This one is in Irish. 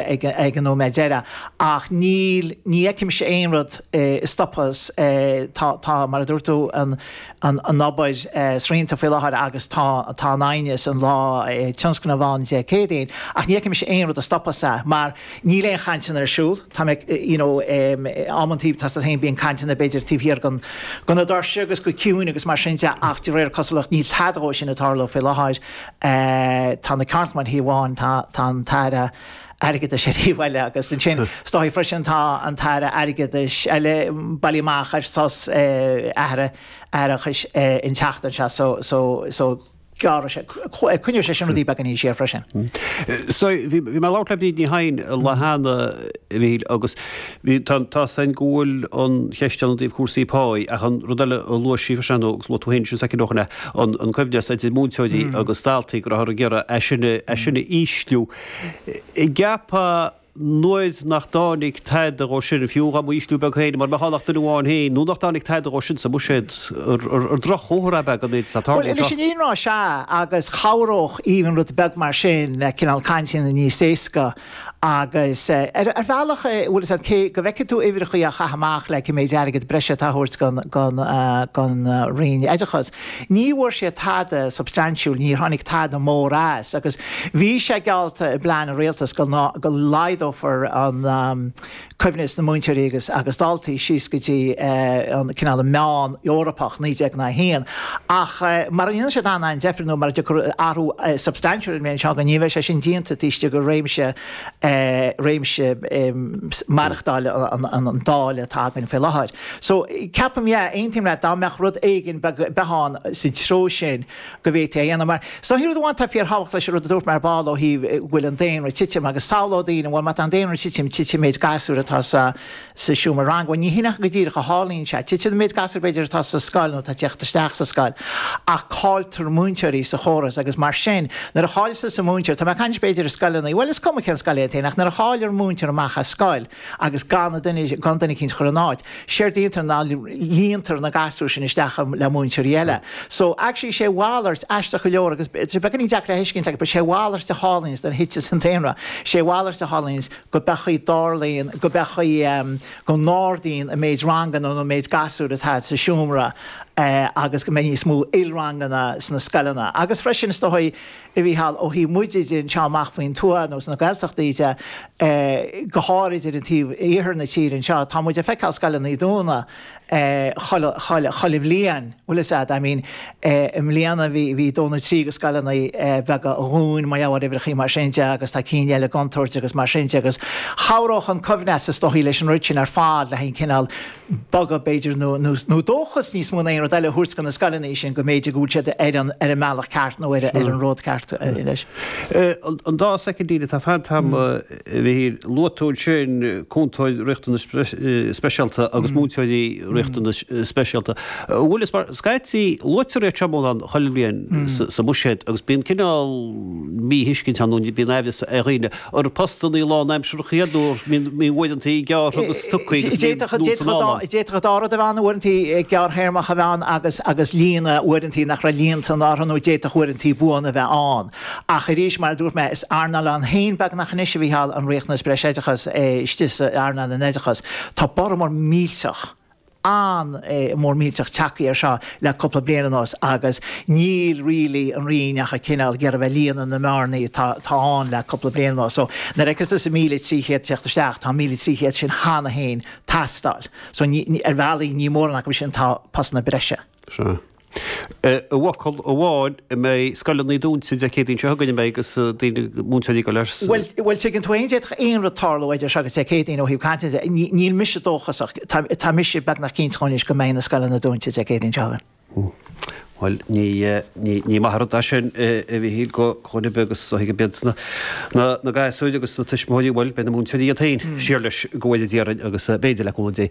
ag an nóiméad deiridh ach níl, ní fheicimse aon rud a stopfas, tá, tá, mar a dúirt tú, an, an, an obair srianta faoi láthair agus tá, tá an t-aighneas, an lá tionsclaíoch ann Dé Céadaoin ach ní fheicimse aon rud a stopfas é mar níl aon chainteanna ar siúl, tá mé, you know, amantaí má tá stailc féin bíonn cainteanna ann b'fhéidir taobh thiar den, de na doirse agus go ciúin agus mar sin de ach de réir cosúlacht níl tada dhó sin ag tarlú faoi láthair. tá na ceardchumainn ar thaobh amháin, tá an tAire Airgeadais ar thaobh eile agus ansin is dóichí freisin, tá an tAire Airgeadais le bailiú amach ar sos atharthachta an tseachtain seo so so gearradh sé, coinneoidh sé sin rudaí beagáinín siar freisin. Bhí mé ag labhairt le Bríd Ní Sheighin lá cheana, Mhíchíl, agus. Bhí, tá, tá a fhios againn go bhfuil an cheist ann i dtaobh cúrsaí pá ach an rud eile a luaigh sí freisin agus luaigh tú féin sin soicind ó shin é, an, an coibhneas idir múinteoirí agus daltaí, go rabhthar ag iarraidh é sin a, é sin a ísliú. Ceapfá nuair nach dtáinig tada dhó sin, fiú dá mba ísliú beag féin, mura mbeadh ann ach duine amháin féin, nuair nach dtáinig tada dhó sin sa mbuiséad, ar droch-chomhartha ab ea é gon méid atá Bhuel, tarlaithe anois anseo? an ionrá, sea, agus chabhródh even rud beag mar sin le cineál cainteanna a dhéanamh níos éasca, agus ar bhealach a bhfuil fhios agat cé go bhfeicfidh tú uimhreachaí á gcaitheamh amach le go mbeidh airgead breise á thabhairt don Roinn Oideachais. Ní bhfuair siad tada substaintiúil, níor tháinig tada mór as agus bhí sé geallta i bplean an Rialtais go laghdófaí an coibhneas idir múinteoirí agus agus daltaí síos go dtí an cineál meán Eorpach 19:1 ach mara ndéanann siad an-an-deifir nó mara dtiocfaidh athrú substaintiúil ar an méan seo againn ní bheidh sé sin déanta taobh istigh go réimse réimse maireachtáil an Dáil atá againn faoi láthair. So ceapaim yeah aontaím leat dá mbeadh rud éigin beag bainte amach sa treo sin go bhféadfaí a dhéanamh. Mar, seo rud amháin atá fíorthábhachtach leis an rud a dúirt mé ar ball ó thaobh go bhfuil an daonra ag titim agus samhlódh daoine, bhuel má tá an daonra ag titim, titfidh méid gasúir atá sa sa seomra ranga. Bhuel ní hin é go díreach mar a tharlaíonn sé. Titeann an méid gasúir b'fhéidir atá sa scoil nó atá ag teacht isteach sa scoil ach cailltear múinteoirí sa chóras agus mar sin nuair a chailltear an múinteoir, tá mé ag caint b'fhéidir i scoileanna, bhuel is cuma cén scoil é atá ann ach nuair a chailltear múinteoir amach as scoil, agus gan duine eicínt a chur ina áit. Séard a dhéantar ná líontar na gasúir sin isteach le múinteoirí eile. So, actually sé a mhalairt, aisteach go leor agus tá sé beagáinín deacair a thuiscint agus but sé a mhalairt a tharlaíonns nuair a thiteas an daonra, sé a mhalairt a tharlaíonns go bhféadfadh go dtarlaíonn, go bhféadfadh ehm, go n-ardaíonn an méid ranganna nó an méid gasúir atá sa seomra eh agus go mbeidh níos mó ilranganna sna scoileanna agus freisin is dóigh, a Mhícheáil, ó thaobh muide de, anseo amach faoin tuath nó sna Gaeltachtaí de, go háirid ar an taobh iarthar na tíre anseo, tá muid ag feiceáil scoileanna ag dúnadh chuile bhliain, bhfuil 'fhios a'd. I mean, i mbliana bhí, bhí dó nó trí de scoileanna beaga a dhún mar gheall ar uimhreachaí mar sin de agus tá cinn eile i gcontúirt agus mar sin de agus chabhródh an coibhneas is dóigh leis an rud sin ar fad le haghaidh cineál bogadh, b'fhéidir, nó dóchas níos mó ná aon rud eile a thabhairt do na scoileanna sin go mb'fhéidir go bhfuil siad ar an mbealach ceart nó ar an ród ceart anois. An dá soicind atá fanta, a Mhíchíl, luaigh tú ansin cúntóir riachtanas speisialta agus múinteoirí riachtanas speisialta. An bhfuil, is mar, scaití luaitear iad seo mórán chuile bhliain sa mbuiséad agus bíonn cineál míthuiscint ann nó bíonn aimhreas ar dhaoine. ar postanna lánaimseartha iad nó an mbíonn uaireantaí gearrtha agus tugtha agus mí nó san áireamh. D'fhéadfadh dá rud a bheith ann, uaireantaí gearrthéarmach a bheith ann agus líonadh uaireantaí nach raibh líonta ann orthu nó d'fhéadfadh uaireantaí buana a bheith ann. Ach arís, mar a dúirt mé, is earnáil ann féin beagnach é anois, a Mhícheáil, an riachtanas breisoideachais istigh in earnáil an oideachais. Tá borradh mór millteach. ann mór millteach tagthaí ar seo le cúpla bliain anuas agus níl really an Roinn ach ag cineál iarraidh bheith líonadh na mbearnaí atá ann le cúpla bliain anuas. So nuair a fheiceas tusa 1,300 teacht isteach, tá 1,300 sin cheana féin teastáil. So ar bhealaí ní mórán acu sin atá ina bpostanna breise. Sure. I bhfocal amháin, an mbeidh scoileanna dúnta Dé Céadaoin seo chugainn agus daoine, múinteoirí ag dul ar. Bhuel, tuigeann tú é, d'fhéadfadh aon rud tarlú idir seo agus Dé Céadaoin ó thaobh cainte de. Níl mise dóchasach, tá mise beagnach cinnte anois go mbeidh na scoileanna dúnta Dé Céadaoin seo chugainn. Bhuel, ní maith an rud é sin, a Mhíchíl, go gcuirfidh agus go thuigfidh beagnach na gasúir agus na tuismitheoirí, bhuel, beidh na múinteoirí iad féin, siar leis, go bhfuil, i ndáiríre, agus b'fhéidir, le cúnamh Dé,